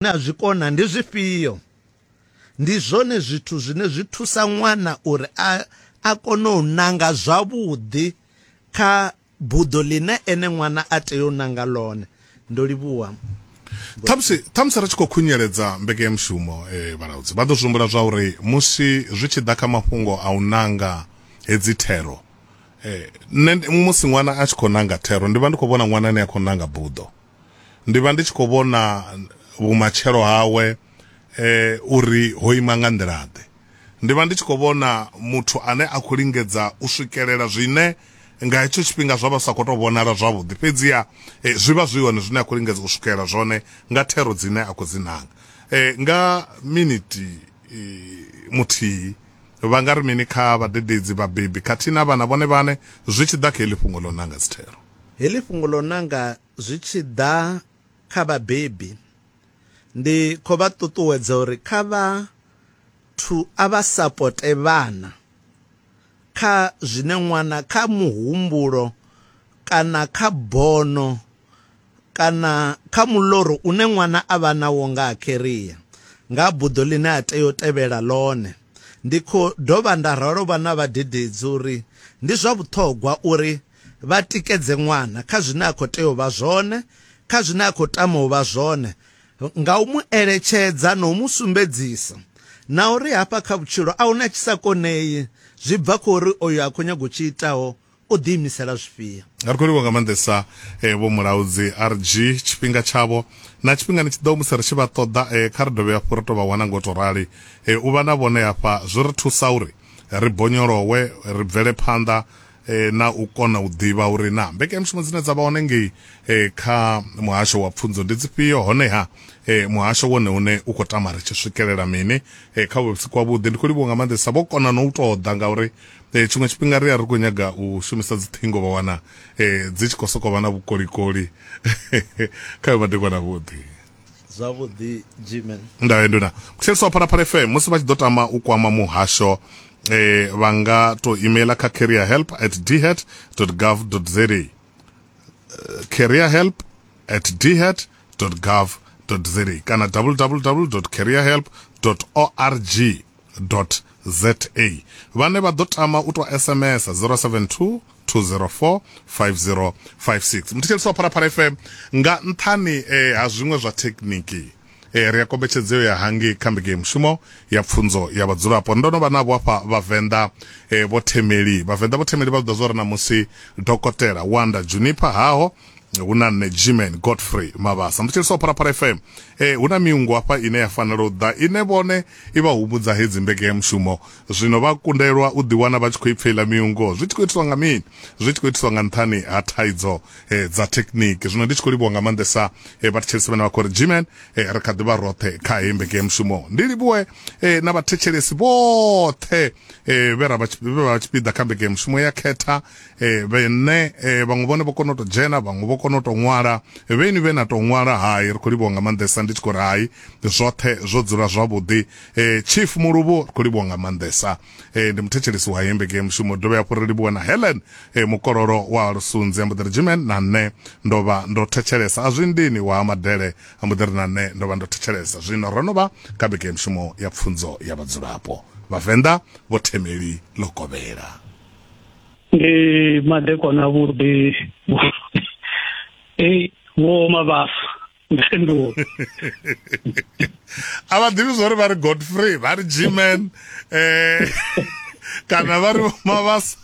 zwine a zwi kona ndi zwifhio? Ndi zwone zwithu zwine zwi thusa ṅwana uri a a kone u nanga zwavhuḓi kha buḓo ḽine ene ṅwana a tea u nanga ḽone. Ndo livhuwa. Ṱhamusi ṱhamusi ri tshi khou khunyeledza mbekanyamushumo eh, vhalaudzi vha ḓo zwi humbula zwa uri musi zwi tshi ḓa kha mafhungo a u nanga hedzi thero eh, nṋe ndi- musi ṅwana a tshi khou nanga thero ndi vha ndi khou vhona ṅwana ane a khou nanga buḓo ndi vha ndi tshi khou vhona vhumatshelo hawe eh uri ho ima nga nḓila ḓe ndi vha ndi tshi khou vhona muthu ane a khou lingedza u swikelela zwine nga hetsho tshifhinga zwa vha sa khou tou vhonala zwavhuḓi fhedziha eh, zwi vha zwi hone zwine a khou lingedza u swikelela zwone nga thero dzine a khou dzi nanga eh, nga miniti eh, muthihi vha nga ri mini kha vhadededzi vhabebi khathihi na vhana vhone vhane zwi tshi ḓa kha heḽi fhungo ḽo nanga dzithero Heḽi fhungo ḽo nanga zwi tshi ḓa kha vhabebi, ndi khou vha ṱuṱuwedza uri kha vha thu a vha sapote vhana kha zwine ṅwana kha muhumbulo kana kha bono kana kha muḽoro une ṅwana a vha nawo nga ha kheria, nga ha buḓo ḽine a tea u tevhela ḽone. Ndi khou dovha nda ralo vha na vhadededzi uri ndi zwa vhuṱhogwa uri vha tikedze ṅwana kha zwine a khou tea u vha zwone, kha zwine a khou tama u vha zwone, nga u mu eletshedza na u mu sumbedzisa na uri hafha kha vhutshilo a huna tshi sa konei, zwi bva kha uri oyo a khou nyaga u tshi itaho o ḓiimisela zwifhio. Ri khou livha nga maanḓesa eh, vho mulaudzi RG tshifhinga tshavho na tshifhingani tshi ḓaho musi ri tshi vha ṱoḓa eh, kha ri dovhe hafhu ri tou vha wana ngo to rali eh, u vha na vhone hafha zwi ri thusa uri ri bonyolowe ri bvele phanḓa e, na u kona u ḓivha uri na mbekanyamushumo dzine dza vha hone ngei e, kha muhasho wa pfunzo ndi dzifhio honeha e, muhasho wone une u khou tama ri tshi swikelela mini e, kha vhusi kwavhuḓi ndi khou livhuwa nga maanḓesa vho kona no u tou ḓa ngauri e, tshiṅwe tshifhinga ri a ri khou nyaga u shumisa dziṱhingo vha wana e, dzi tshi khou sokou vha na vhukolikoli kha yo madekwana vhuḓi zwavhuḓi jimen ndawe nduna muthetshelesi wa phalaphala fm musi vha tshi ḓo tama u kwama muhasho eh, vha nga to emaila kha career help at dhat gov za eh, career help at dhat gov za kana www career help org za vhane vha ḓo tama u tou sms 072 204 5056 muthetshelisi wa phalaphala fm nga nṱhani eh, ha zwiṅwe zwa thekniki eh, ri a kombetshedzeo ya hangi kha mbege mushumo ya pfunzo ya vhadzulapo ndo no vha navho afha vhavenḓa eh, vho themeli vhavenḓa vho themeli vha ḓa zwo ri na musi dokotela wanda juniper haho hu na nṋe gman godfrey mavhasa ndi tshilisaho pharapara fm e hu na miungo hafha ine ya fanela u ḓa ine vhone i vha humbudza hedzi mbekeyamushumo zwino vha kundelwa u ḓiwana vha tshi khou ipfa iḽa miungo zwi tshi khou itiswa nga mini zwi tshi khou itiswa nga nṱhani ha thaidzo e, dza thekniki zwino ndi tshi khou livhuwa nga maanḓesa e, vhathetshelesi vhane vha khou ri gman e, ri kha ḓivha roṱhe kha heyi mbekeyamushumo ndi livhuwe e, na vhathetshelesi vhoṱhe e, vhe ra vha tshipiḓa kha mbekeyamushumo ya khetha eh vhe nṋe eh vhaṅwe vhone vho kona u to dzhena vhaṅwe vho kona u to ṅwala vheni vhe na to ṅwala hai ri khou livhuwa nga maanḓesa ndi tshi khou ri hai zwoṱhe zwo dzula zwavhuḓi eh chief muluvhu ri khou livhuwa nga maanḓesa eh ndi muthetshelesi wa hembe game mushumo dovhe hafhu ri livhuwa na helen eh mukololo wa lusunzi ambo ḓi ri jimen na nṋe ndo vha ndo thetshelesa a zwi ndini wa madele ambo ḓi ri na nṋe ndo vha ndo thetshelesa zwino ro no vha kha bege ya mushumo ya pfunzo ya vhadzulapo vhavenḓa vho themeli ḽo kovhela ndi madekwana avhuḓi ei vho mavhasa mpendulo a vha ḓivhi zwori vha ri godfrey vha ri gman um eh, kana vha ri mavhasa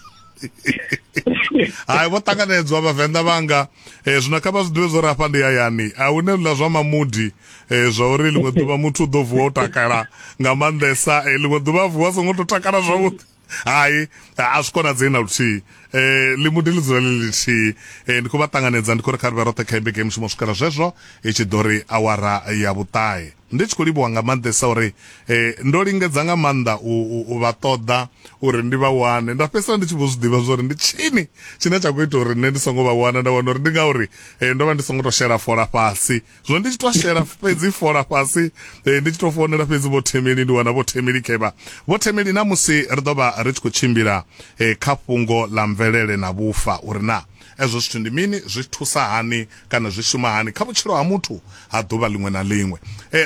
hai vho ṱanganedzwa vhavenḓa vhanga um zwino kha vha zwi ḓivhe zwo ri afha ndi hayani a hu ne lula zwa mamudi um zwa uri ḽiṅwe ḓuvha muthu u ḓo vuwa o takala nga maanḓesa um ḽiṅwe ḓuvha a vuwa a songo to takala zwavhuḓi hai a zwi konadzei na luthihi eh ḽi muḓi ḽi dzula ḽi lithihi eh ndi khou vha ṱanganedza ndi khou ri kha ri vhe roṱhe kha imbe game mushumo swikela zwezwo i tshi ḓo ri awara ya vhuṱahe ndi tshi khou livhuwa nga maanḓesa uri eh ndo lingedza nga maanḓa u, u, u vha ṱoḓa uri ndi vha wane nda fhedzisela ndi tshi vho zwi ḓivha zwori ndi tshini tshine tsha khou ita uri nṋe ndi songo vha wana nda wana uri ndi ngauri eh ndo vha ndi songo to shela fola fhasi zwo ndi tshi to shela fhedzi fola fhasi eh, ndi tshi to founela fhedzi vho themeli ndi wana vho themeli kevha vho themeli na musi ri ḓo vha ri tshi khou tshimbila eh, kha fhungo ḽa mvelele na vhufa uri na ezwo zwithu ndi mini zwi thusa hani kana zwi shuma hani kha vhutshilo ha muthu ha ḓuvha ḽiṅwe na ḽiṅwe eh,